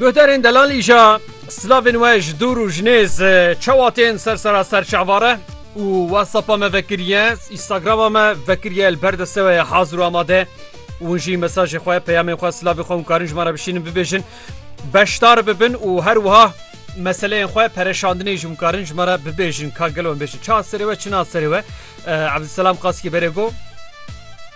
Guhdarên delal îja silavên we ji dûr û ji nêz çawa tên ser sera ser çavare û wesapa me vekiriye Instagrama me vekiriye li ber deste we ye hazir û amade û jî mesajê xwe peyamên xwe silavê xwe hûn karin ji me re bişînin bibêjin beşdar bibin û her wiha meseleyên xwe pereşandinê ji hûn karin ji me re bibêjin ka gelo em bêjin ça serê we çina serê we Abdulselam Qaskî berê got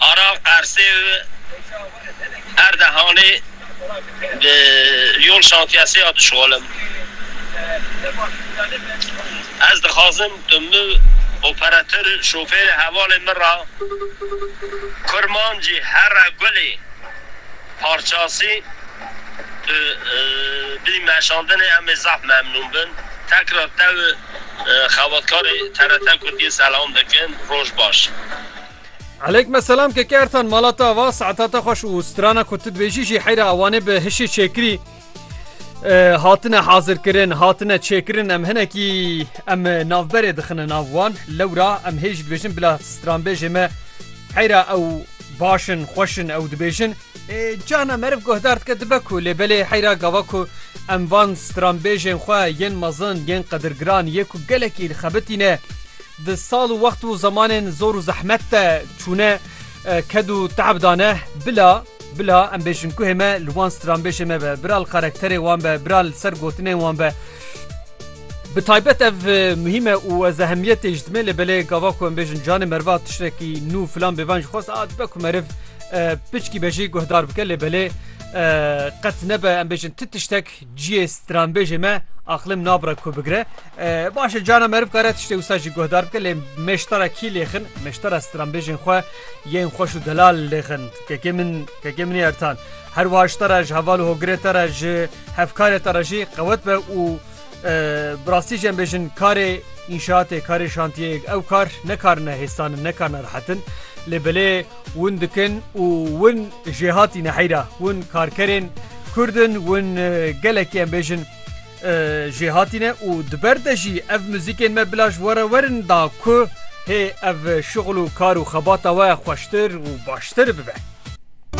Arav Qersê û Erdehanê bi yol şantiyesê ya dişolim. Ez dixwazim tu min û operatêr û şofêrê hevalên min re Kurmancî Here Gulê Parçasî tu bidî meşandinê em ê zaf memnûn bin. Tekrar te û xebatkarê TRT Kurdiyê selam dikin. Roj baş. Eleykme selam keke Ertan mala te ava saeta te xweş û strana ku tu dibêjî jî heyra ewanê bi hişê çêkirî hatine hazirkirin hatine çêkirin em hinekî em navberê dixine nav wan lewra em hê jî dibêjin bila stranbêjê me heyra ew başin xweşin ew dibêjin cana meriv guhdar dike dibe ku lê belê heyra gava ku em van stranbêjên xwe yên mezin yên qedirgiran yê ku gelekî xebitîne Di sal û wext û zemanên zor û zehmet de çûne, ked û te'b dane, bila, bila em bêjin guhê me li wan stranbêjê me be, bila li karakterê wan be, bila li ser gotinên wan be. Bi taybet ev muhîm e û ez ehemiyetê ji dimê lê belê gava ku em bêjin canê meriva tiştekî nû filan bê van jî xwest a dibe ku meriv piçkî be jî guhdar bike lê belê qet nebe em bêjin ti tiştek Ciyê stranbêjê me aqlim nabire ku bigire. Baş e cana meriv kare tiştê wisa jî guhdar bike lê meştara kî lêxin meştara stranbêjên xwe yên xweş û delal lêxin kekê min kekê minê ertan her wiha ji te re ji heval û hogirê te re ji hevkarê te re jî qewet be û bi rastî jî em bêjin karê înşaatê karê şantiyê ew kar ne karine hêsanin ne karine rihetin lê belê Win dikin û win jê hatîne heyra. Win karkerên Kurd in, win gelekî em bêjin jê hatîne û di ber de jî ev muzîkên me bila ji we re werin da ku hê ev şixul û kar û xebata we xweştir û baştir bibe.